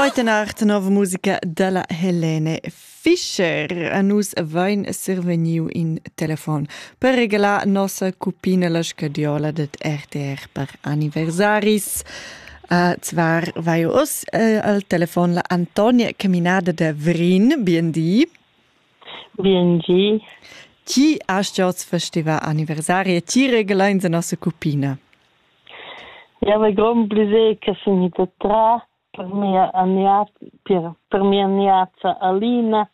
Heute Nacht nova musica della Helene Fischer. A nus vain survegniu in telefon per regalar nossa cupina la scadiola det RTR per anniversaris. Uh, zwar vai us uh, al telefon la Antonia Caminada de Vrin, BND. BNG. Chi hast du festival anniversarie? Chi regalain la nossa cupina? Jau hai grond plascher che sun ida tras per mia aniat per per mia niaza Alina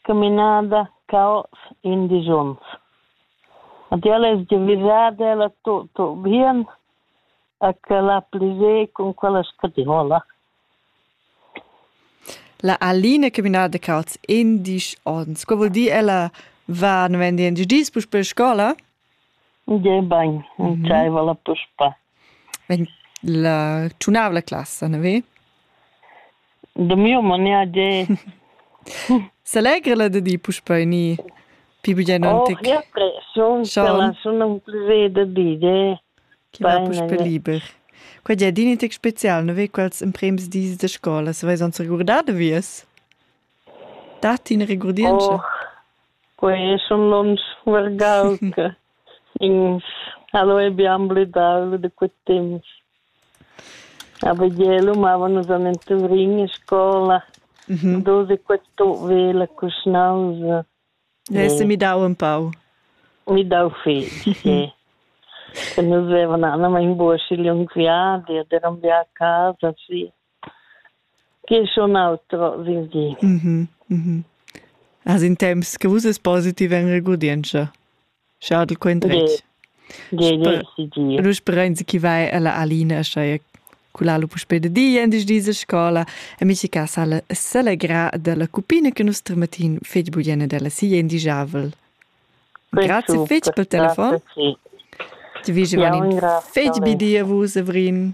caminada ca hoz indesch ons. Ed ella es giavüschada ella to to bien e ch'el ha plascher cun quella scadiola. La Alina caminada ca hoz indesch ons, co voul dir ella va novament indesch dis puspè a scoula? Gebain, entschaiva la puspè. Vegn la tschunavla classa, na ve? Da miu manià ge. S'allegra la da di puspè ni pi bugien antic? Oh, che pressiun, Sean. sun un plaisir da bide. Chi va puspè liber. Qua già din tec spezial, na ve quels emprems dis da scola, se vais ans regurdar da vies? Datti ina regurdientscha? Oh, quei schon lunsch vargau che ins ha leu bien blidau da quei temps. Aber ielo mavan nus an in Tuvrin in scola. Mhm. Dus e quattro vela cuschnausa. Hast du mi dau un pau? Mi dau fetg, sì. Che nus avevan anna in buoschi liung viadi ed eran via a casa, sì. Che schon outro, vins gi. Mhm, mhm. As in temps che vus es positiv in regurdientscha. Schadel quendretg. Ge, ge, si di. Nu sperenzi chi vai alla Alina, schai culalo puspe de di en dis diese scola e mi ci casa la selegra della cupina che nostra matin fetg bugliene della sia indijavel. Grazie fetg per telefon. Ti vige van fetg bidia vus, Avrin.